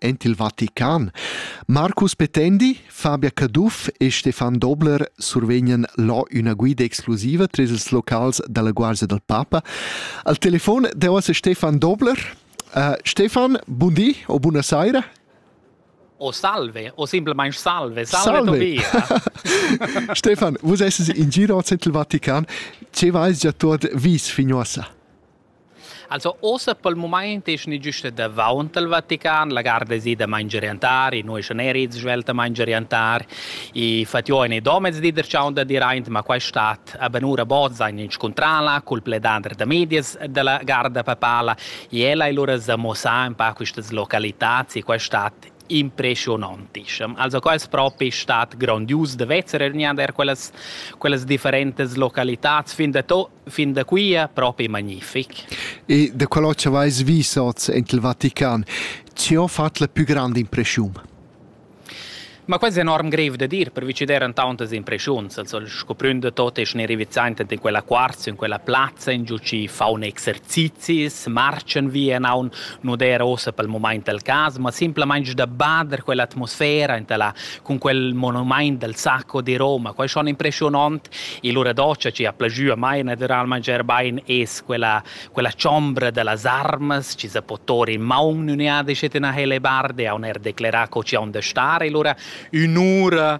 en il Vatican. Marcus Petendi, Fabia Caduff e Stefan Dobler survegnan là üna guida exclusiva tras ils locals dalla Guardia del Papa. Al telefon deu a Stefan Dobler. Uh, Stefan, bun di o buona saira. O salve, o simplemente salve, salve, salve. Tobia. Stefan, vus esses in giro al Central Vatican, ce vais già tuot vis fin uossa? Also ossa pel mumaint es gnü güsta davaunt al Vatican, la garda es ida mangeriantar, i nu eschan eir its svelt a mangeriantar, i fat jo in domez di der chaun da dir aint, ma quaist stat a bunura bod zain inscuntrala cul pledander da medias da la garda papala i ella e lura s'ha muossà ün pa quistas localitats e quaist stat impressionantischem. Also quels propi stat grandius de vezer ergnader quellas quellas differentes localitats fin da to fin da quia propi magnific. E da quello che vais vis oz in il Vatican, ci ho fatto la più grande impressione. Ma quasi enorm grev da dir, per vicideren tauntas impressiuns, also sco pründe tot es ne rivizaint in quella quarza, in quella plazza, in giu ci faune exercizis, marchen via naun nu d'eira ussa pel mumaint il cas, ma simplamaing da bader quell'atmosfera enta la cun quel monumaint del sacco di Roma. Quai schon impreschiunant. E lura doce chi ha plajü a mai natüralmaing eir bain es quella quella chombra da las armas chi sa po tor in maun üna disch et üna helebarde, haun eir declerà co chi haun da star e lura ün'ura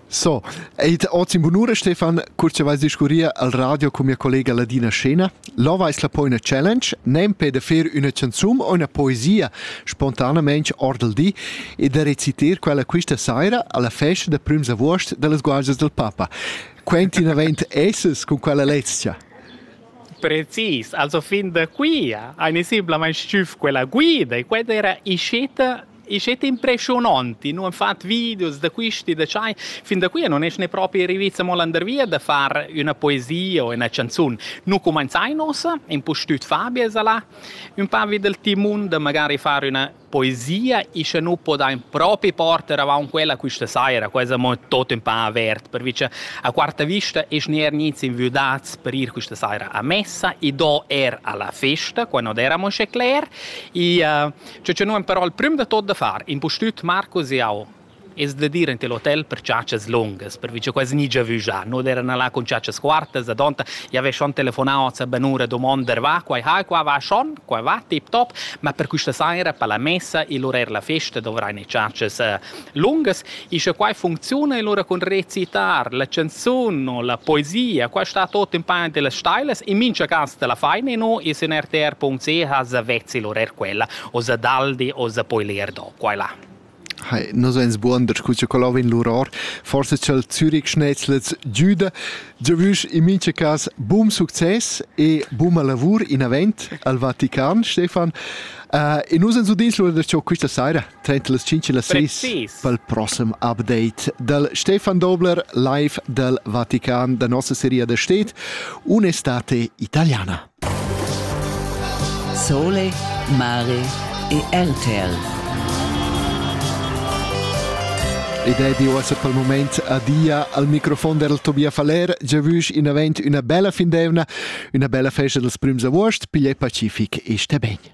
So, ed oz in bunura, Stefan, cur che vais discurrir al radio con mia collega Ladina Scena. Lova es la poina challenge, nem pe da fer üna canzun o üna poesia spontanamente ord il di e da reciter quella questa saira alla festa da prüms avuost dellas guardias del Papa. Quenti navent esses con quella lezia? Precis, also fin da qui ha nisiblamain stüf quella guida e quella era isceta E sche ti impressiononti, nu han fat videos da quisti, da tschai, fin da qui non es ne propi rivits amo landervia da far üna poesia o üna canzun. Nu cumanzainos, impustüt Fabia sa là, ün pa vi dal timun da magari far üna poesia e sche nu podain propi porter avaunt quella quista saira, quai es amo tot ün pa avert, pervi cha a quarta vista es neir nits inviudats per ir quista saira a messa e do er alla festa, quai non era amo sche cler, e uh, Che che nu am però il prüm da tot da far, impustüt Marcus e eu. Es da dir ante l'hotel per ciacias lungas, pervi cha quasi gni giavü già. Noi erano là con ciacias quartas, adonta i aveva schon telefonà hoz a Benura domandan va, quai hai, qua va schon, qua va, tip top, ma per questa saira per la messa e l'orair la festa dovrai ne ciacias eh, lungas e sche quai funcziuna e lura cun recitar la canzun o la poesia quai sta tot in pain dellas stailas in mincha cas te la faina no e sin rtr.ch sa vezzi lur er quella o sa daldi o sa poi leer do qua là Hey, nos eins buon da scuccia colau in luror, forse ch'el Zürich schnetzlets giuda, giavüsch in mincha cas bum success e buma lavur in avent al Vatican, Stefan. Uh, e nus ens udins lura da ciò quista saira. Tet las 5 e las 6 pel prossem update dal Stefan Dobler live dal Vatican da nossa seria da stet Un'estate italiana. Sole, mare e RTL. Ed è di uossa pel moment adia al microfon del Tobia Faller, giavüsch in avent üna bella fin d'eivna, üna bella festa dels prüms avuost, pigliè pacific e sté ben.